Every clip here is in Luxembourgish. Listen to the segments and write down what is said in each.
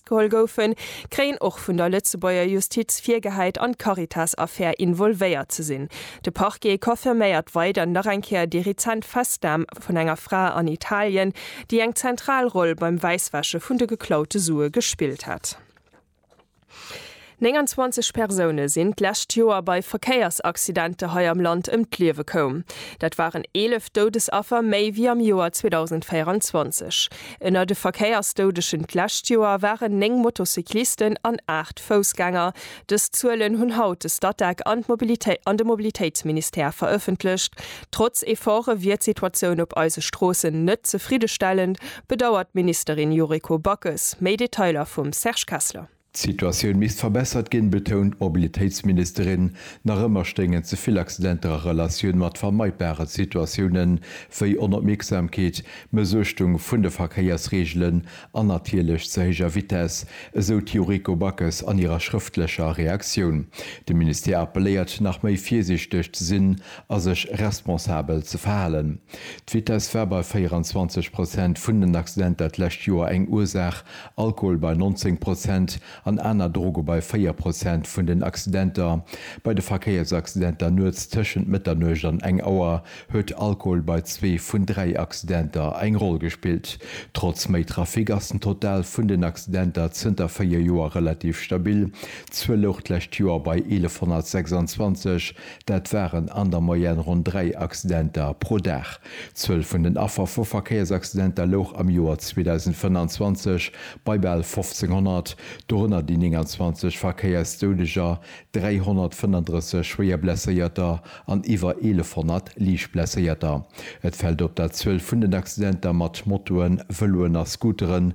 geholl goufen, kréien och vun der Lëtzebuerger Justiz virgehäit an d'Caritas-Affär involvéiert ze sinn. De Parquet confirméiert weider nach eng Kéier déi rezent Festnam vun enger Fra an Italien, déi eng zentral Roll beim Wäisswäsche vun de geklaute Sue gespillt hätt. 29 Persoune sinn d'lescht Joer bei Verkéiersaccidente hei am Land ëm d'Liewe koum. Dat waren 11 Doudesaffer méi wéi am Joer 2024. Ënner de Verkéiersdoudegen d'lescht Joer waren 9 Motocyclisten an 8 Foussgänger. Dës Zuelen hunn haut de Statec an de Mobilitéitsministère verëffentlecht. Trotz Efforte wier d'Situatioun op eise Stroossen net zefriddestellend, bedauert d'Ministerin Yuriko Backes. Méi Detailer vum Serge Kessler. D'Situatioun misst verbessert ginn, betount d'Mobilitéitsministerin. Nach ëmmer stéingen ze vill Accidenter a Relatioun mat vermeidbare Situatiounen, wéi Onopmierksamkeet, Mëssuechtung vun de Verkéiersreegelen an natierlech ze héijer Vitess, esou d'Yuriko Backes an hirer schrëftlecher Reaktioun. De Ministère appelléiert, nach méi virsiichteg ze sinn a sech responsabel ze verhalen. D'Vitess war bei 24 Prozent vun den Accidenter d'lescht Joer eng Ursaach Alkohol bei 19 Prozent an aner Droge bei 4 Prozent vun den Accidenter. Bei de Verkéiersaccidenter nuets tëschent Mëtternuecht an eng Auer huet Alkohol bei zwee vun dräi Accidenter eng Roll gespillt. Trotz méi Trafic ass den Total vun den Accidenter zënter véier Joer relativ stabil. D'Zuel louch d'lescht Joer bei 1126, dat waren an der Moyenne ronn dräi Accidenter pro Dag. D'Zuel vun den Affer vu Verkéiersaccidenter louch am Joer 2025 bei bal 1500, dorënner déi 29 Verkéiersdoudeger, 335 Schwéierblesséierter an iwwer 1100 Liichtblesséierter. Et fält op, dat d'Zuel vun den Accidenter mat Motoen, Vëloen a Scooteren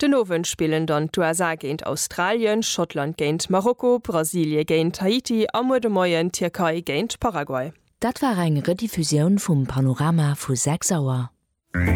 Den Owend spillen dann d'USA géint Australien, Schottland géint Marokko, Brasilie géint Haiti a muer de Moien d'Tierkei géint Paraguay. Dat war eng Rediffusioun vum Panorama vu 6 Auer.